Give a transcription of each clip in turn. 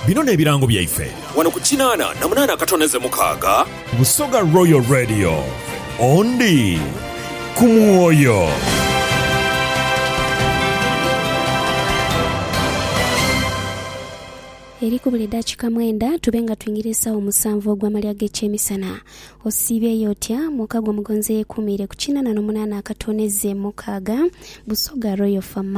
Bino n'ebirango byaife. Wano ku kinaana na munaana akatondeze mukaaga. Busoga Royal Radio, Ondi ku mwoyo. Eri kubula edakika mwenda tube nga twingira esawa musanvu ogwamalya g'ekyemisana. Osiibyeyo otya? Mwoka gwo mugonzi eyekuumiire ku kinaana no munaana akatooneze mukaaga. Busoga Royal FM.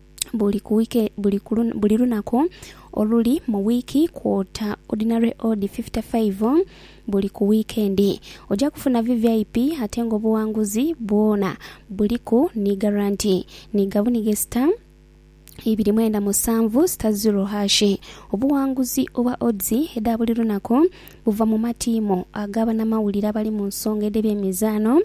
buli ku wiiki buli ku buli lunaku oluli mu wiiki kwota ordinary odd 55 buli ku wiikendi. Oja kufuna VVIP ate nga obuwanguzi bwona buliku ni garanti ni gabunige star ibiri mwenda musanvu star zero hash. Obuwanguzi obwa odds edha buli lunaku buva mu matiimu aga banamawulire abali mu nsonga edh'ebyemizaano.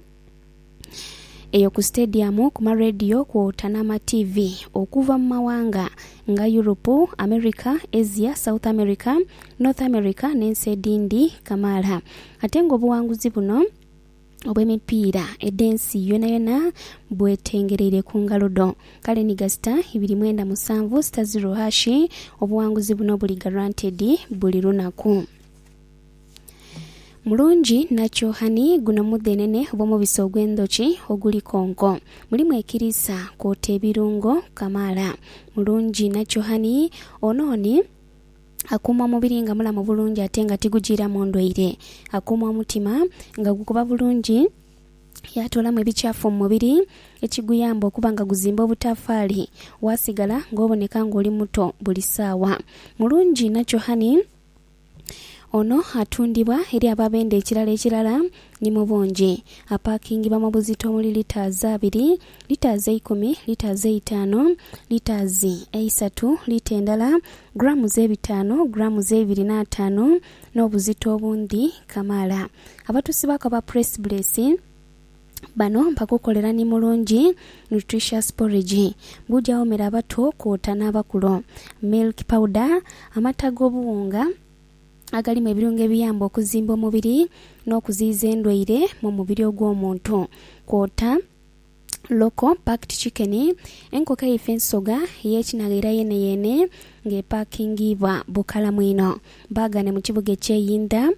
eyo ku sitediyamu, ku marediyo kwota n'amatiivi okuva mu mawanga nga Yuropu, Amerika, Asia, South Amerika, North Amerika n'ensi edhindi kamaala. Ate ng'obuwanguzi buno obw'emipiira edh'ensi yonayona bwetengereire ku ngalo dho. Kale ni gasita ibiri mwenda musanvu sita ziro hashi, obuwanguzi buno buli garanted buli lunaku. Mulungi nakyo hani guno mudhenene obw'omubisi ogw'endhoki oguli konko. Mulimu ekiriisa kwota ebirungo kamaala. Mulungi nakyo hani ono ni akuuma omubiri nga mulamu bulungi ate nga tigujiiramu ndwaire. Akuuma omutima nga gukuba bulungi yaatoolamu ebikyafu mu mubiri ekiguyamba okuba nga guzimba obutaafaali waasigala ng'oboneka ng'oli muto buli saawa. Mulungi nakyo hani Ono atundibwa eri ababenda ekirala ekirala ni mu bungi. Apakingibwa mu buzito omuli litres abiri, litres eikumi, litres eitaano, litres eisatu, lita endala, grams ebitaano, grams eibiri n'ataano n'obuzito obundhi kamaala. Abatusi baaku aba Press Bless. Bano bagukolera ni mulungi, nutritious porridge. Gujawoomera abato kwota n'abakulu. Milk powder, Amata g'obuwunga agalimu ebirungo ebiyamba okuzimba omubiri n'okuziyiza endwaire mu mubiri ogw'omuntu kwota local packed chicken, enkoko eifa ensoga ey'ekinaghaira yeeneyeene nga epaakingiibwa bukalamu inho. Baaghane mu kibuga eky'e Yinda.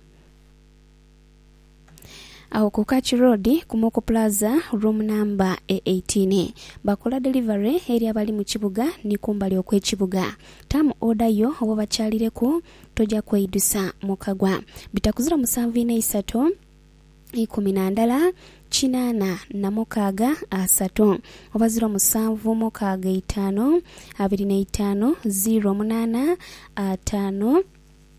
Agho ku Kach Road ku Moko Plaza, room namba e eighteen. Bakola delivery eri abali mu kibuga ni kumbali okw'ekibuga. Term order yo oba obakyalireku toja kweidusa mu kagwa. Bitakuzira musanvu ina isato ikumi na ndala kinaana na mukaaga asatu oba ziro musanvu mukaaga itaanu abiri na itaanu ziro munaana ataanu.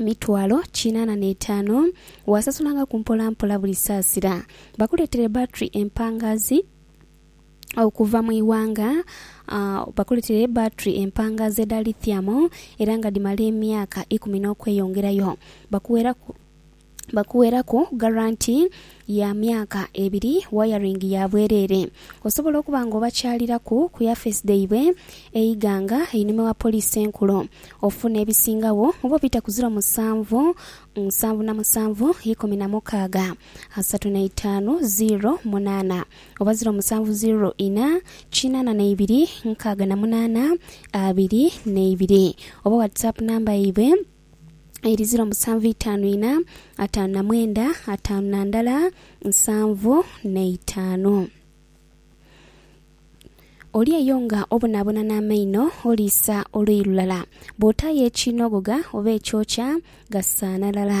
mitwalo kinaana n'etaanu, waasasulangako mpola mpola buli saasira. Bakuleetere battery empangaazi okuva mu ighanga Bakuleetere battery empangaazi edha lithium era nga dhimala emyaka ikumi n'okweyongerayo. Bakuweeraku. bakuweraku garanti ya myaka ebiri wayaringi ya bwereere. Osobola okuba nga obakyaliraku ku yafeesi dhaibwe e Iganga einhuma wa Poliisi Enkulu ofune ebisingagho oba obita ku ziro musanvu nsanvu na musanvu ikumi na mukaaga asatu na itaanu ziro munaana oba ziro musanvu ziro ina kinaana na ibiri nkaaga na munaana abiri na ibiri oba WhatsApp namba yaibwe eri ziro musanvu itaanu ina, ataanu na mwenda, ataanu na ndala nsanvu n'eitaanu. Oli eyo nga obonaabona n'amaino, oliisa oluyi lulala. Bw'otaayo ekiinogoga oba ekyokya, gasaana lala.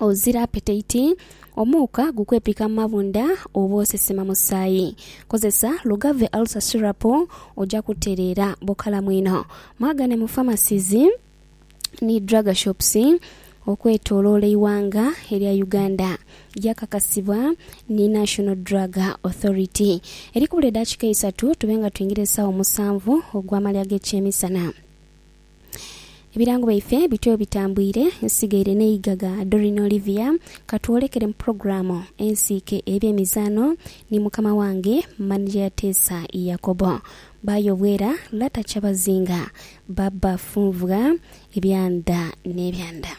Ozira apetaiti, omuuka gukwepika mu mabunda oba osesema musaayi. Kozesa Lugave Ulcer Syrup oja kutereera bukalamu inho. Mwagane mu pharmacies ni drug shops okwetoloola eighanga erya Uganda. Gyakakasibwa ni National Drug Authority. Eri kubula edakika eisatu tube nga twingira esawa musanvu ogw'amalya g'ekyemisana. Ebirango byaife bityo bitambwire nsigaire n'eigaga Doreen Olivia katwolekere mu pulogulaamu ensiike ey'ebyemizaano ni mukama wange Manija Yateesa Yakobo Baayo Obwera Lata Kyabazinga Baba Funvwa Ebyanda n'ebyanda.